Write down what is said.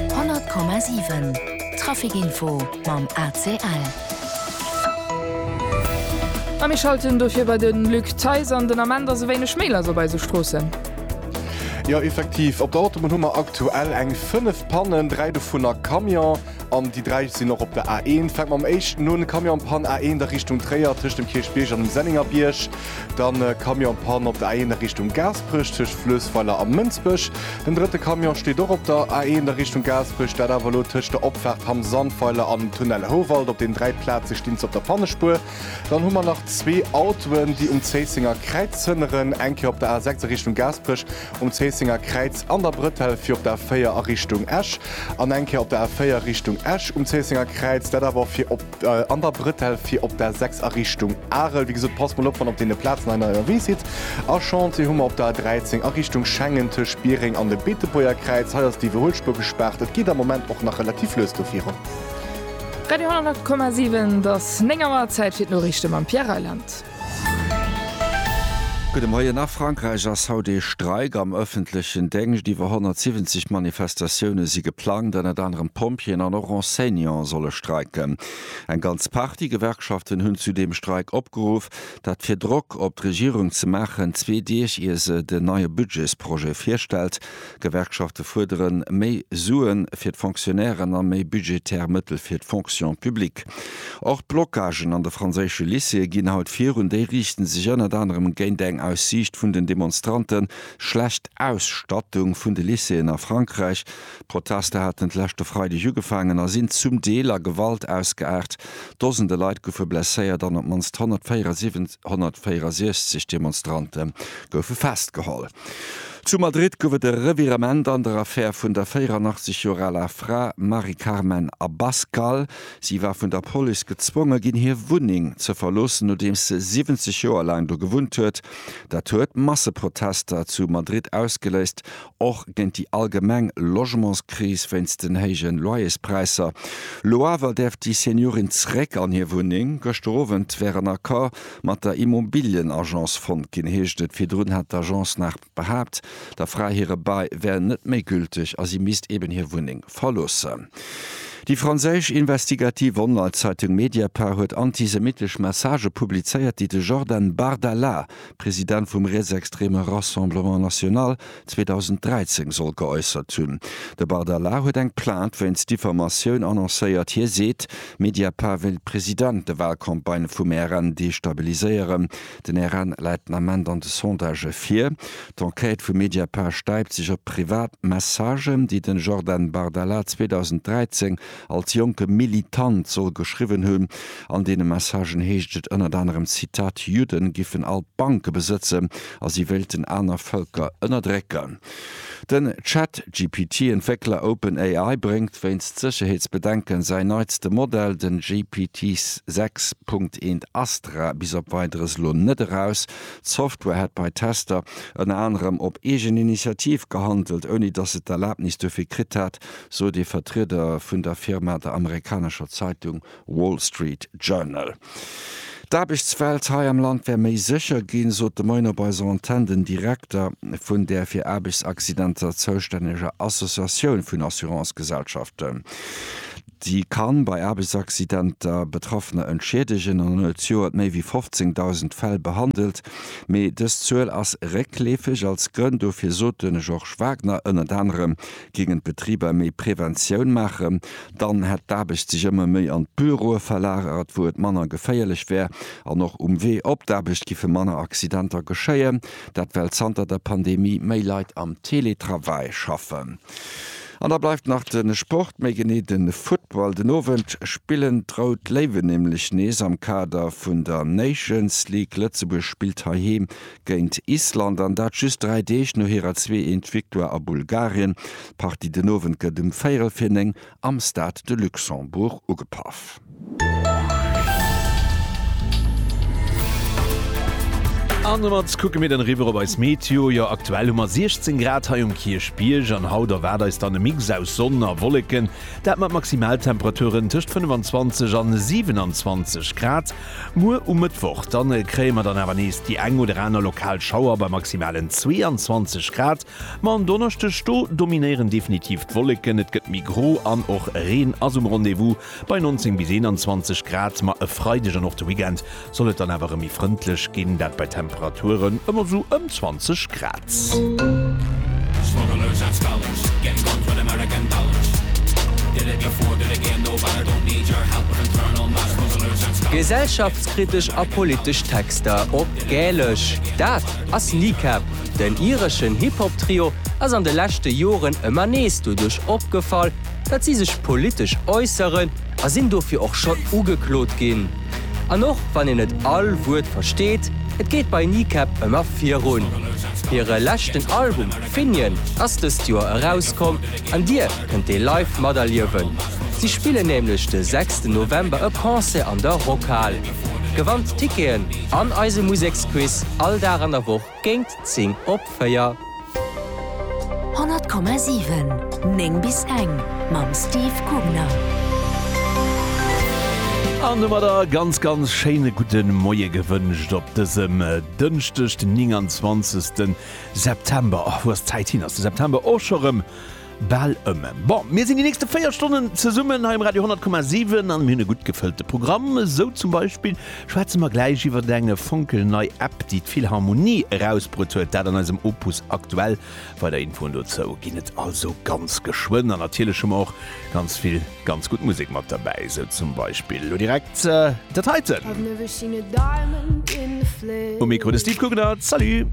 100,7 Trafic-Info mam ACL. A mir schalten dofir bei de Luc Theis an. Den Ament ass e wéineg méi lass op eise Stroossen. Jo effektiv, op der Autobunn hu mer aktuell eng 5 Pannen, 3 dovun a Camion an déi 3 sinn och op der A1. Fänke mer mam éischten un, Camionpann A1 a Richtung Tréier tëscht dem Kierchbierg an dem Sennengerbierg. dann e Camion-Panne op der A1 a Richtung Gaasperech tëscht Fluessweiler a Mënsbech. Den drëtte Camion steet och op der A1 a Richtung Gaasperech, dat awer elo tëscht der Opfaart Hamm Sandweiler an Tunnel Houwald. Op den dräi Plaze stinn se op der Pannespuer. Dann hu mer nach zwee Autoen, déi um Zéissenger Kräiz zënneren, eng Kéier op der A6 a Richtung Gaasperech, um Zéissenger Kräiz an der Brëtell fir op der A4 a Richtung Esch an eng Kéier op der A4 Richtung Esch um Zéissenger Kräiz, dat awer fir op. an der Brëtell fir op der 6 a Richtung Arel. Wéi gesot, passt mol op, wann op deene Plazen hei ënnerwee sidd. A Chantier hu mer op der 13 a Richtung Schengen tëscht Biereng an dem Beetebuerger Kräiz. Hei ass déi Iwwerhuelspuer gespaart. Et geet am Moment och nach relativ lues do virun. Radio 108,7, et ass 9 Auer, Zäit fir d'Noriichte mam Pierre Reyland. Gudde Moien. A Frankräich ass haut ee Streik am ëffentlechen Déngscht. Iwwer 170 Manifestatioune si geplangt. Ënnert anerem Pompjeeën an och Enseignante solle streiken. Eng ganz Partie Gewerkschaften hunn zu deem Streik opgeruff. Dat fir Drock op d'Regierung ze maachen, zwee Deeg ier se den neie Budgetsprojet virstellt. D'Gewerkschafte fuerdere méi Sue fir d'Fonctionnairen a méi budgetär Mëttel fir d'Fonction publique. Och d'Blockagen an de franséische Lycéeë ginn haut virun. Déi riichte sech ënnert anerem géint eng aus Siicht vun den Demonstrante schlecht Ausstattung vun de Lycéeën a Frankräich. D'Protester haten d'leschte Freideg ugefaangen a sinn zum Deel a Gewalt ausgeaart. Dosende Leit goufe blesséiert an op d'mannst 164 Demonstrante goufe festgeholl. Zu Madrid gouf et e Revirement an der Affär vun der 84 Joer aler Fra Mari Carmen Abascal. Si war vun der Police gezwonge ginn, hir Wunneng ze verloossen, nodeems se 70 Joer laang do gewunnt huet. Dat huet Masseprotester zu Madrid ausgeléist, och géint déi allgemeng Logementskris wéinst den héije Loyerspräisser. Lo awer däerf déi Seniorin zeréck an hir Wunneng. Gëschter Owend wär en Accord mat der Immobilien-Agence fonnt ginn, heescht et. Virdrun hat d'Agence nach behaapt, der Fra hire Bail wär net méi gülteg a si misst eben hir Wunneng verloossen. Déi franséisch investigativ Online-Zeitung Mediapart huet antisemittesch Messagë publizéiert, déi de Jordan Bardella, President vum rietsextreme Rassemblement National, 2013 soll geäussert hunn. De Bardella huet eng Plainte wéinst Diffamatioun annoncéiert. Hie seet, Mediapart wéilt President de Walcampagne vum RN destabiliséieren. Den RN läit den Ament an de Sondagë vir. D'Enquête vu Mediapart stäipt sech op privat Messagen, déi de Jordan Bardella 2013 als jonke Militant soll geschriwwen hunn. An deene Messagen heescht et ënnert anerem, Zitat, Judden giffen all d'Banke besëtzen a si wéilten aner Vëlker ënnerdrécken. Den Chat-GPT-Entwéckler OpenAI bréngt wéinst Sécherheetsbedenken säin neitste Modell, den GPT 6 Punkt 1 Astra, bis op Weideres elo net eraus. D'Software hätt bei Tester ënner anerem op eegen Initiativ gehandelt, ouni datt se d'Erlabnis dofir kritt hat. sot ee Vertrieder vun der Firma der amerikanescher Zeitung Wall Street Journal. D'Aarbechtswelt hei am Land wär méi sécher ginn, sot de Moien op eiser Antenn den Direkter vun där fir Aarbechtsaccidenter zoustänneger Associatioun vun Assurancegesellschaften. Déi ka bei Aarbechtsaccidenter Betraffener entschiedegen an huet zjoert méi wéi 15.000 Fäll behandelt. Mee dës Zuel ass réckleefeg. Als Grënn dofir sot de Georges Wagner ënnert anerem Géingen d'Betriber méi Preventioun maachen, dann hätt d'Aarbecht sech ëmmer méi an d'Büroe verlagert, wou et manner geféierlech wär. An och um Wee op d'Aarbecht giffe manner Accidenter geschéien. Dat well zanter der Pandemie méi Leit am Teletravail schaffen. An da bleift nach de Sport, méi genee de Football. Den Owend spillen d'Rout Léiwen nämlech nees am Kader vun der Nations League. Lëtzebuerg spillt heiheem géint Island, an dat just dräi Deeg no hirer zwee eent Victoire a Bulgarien. D'Partie den Owend gëtt um véierel fir néng am Stade de Luxembourg ugepaff. An domat kucke mir dann eriwwer op eis Meteo. Jo, aktuell hu mer 16 Grad hei um Kierchbierg an haut erwaart eis dann e Mix aus Sonn a Wolleken, dat mat Maximaltemperaturen tëscht 25 a 27 Grad. Muer um Mëttwoch dann kréie mer dann awer nees déi eng oder aner lokal Schauer bei maximalen 22 Grad. Ma en Donneschdeg, do dominéieren definitiv d'Wolleken, et gëtt méi gro an och Reen ass um Rendez-vous bei 19 bis 21 Grad. Ma e Freideg an och de Weekend soll et dann awer erëm méi frëndlech ginn, dat bei Temperaturen ëm esou ëm 20 Grad. Gesellschaftskritesch a politesch Texter op Gälesch, dat ass Kneecap. Den ireschen Hip-Hop-Trio ass an de leschte Joren ëmmer nees doduerch opgefall, datt si sech politesch äusseren a sinn dofir och schonn ugeklot ginn. An och wann een net all Wuert versteet, et geet bei Kneecap ëmmer virun. Hire leschten Album Finian ass dëst Joer erauskomm an Dir kënnt dee live materliewen. Si spillen nämlech de sechsten November e Concert an der Rockhal. Gewannt Ticketen an eise Museksquiz all Dag an der Woch Géint 10 op 4. 100,7, 9 bis eng mam Steve Gubner. An domat a ganz ganz schéine gudde Moie gewënscht op dësem Dënschdeg den 29 September. Och wou ass d'Zäit hin? Ass de September och scho rëm? Bal ëm. Bon, mir sinn déi nächste 4 Stonnen zesummen hei um Radio 10,7 an mir hunn e gutt gefëllte Programm. Esou zum Beispill schwätze mer gläich iwwert eng fonkelnei App, déi d'Philharmonie erausbruet huet, dat an eisem Opus Aktuell. Weider Infoen dozou ginn et also ganz geschwënn. An natierlech hu mer och ganz vill ganz gutt Musek mat derbäi, esou zum Beispill elo direkt dat heiten. Um Mikro de Steve Guggenert. Salut!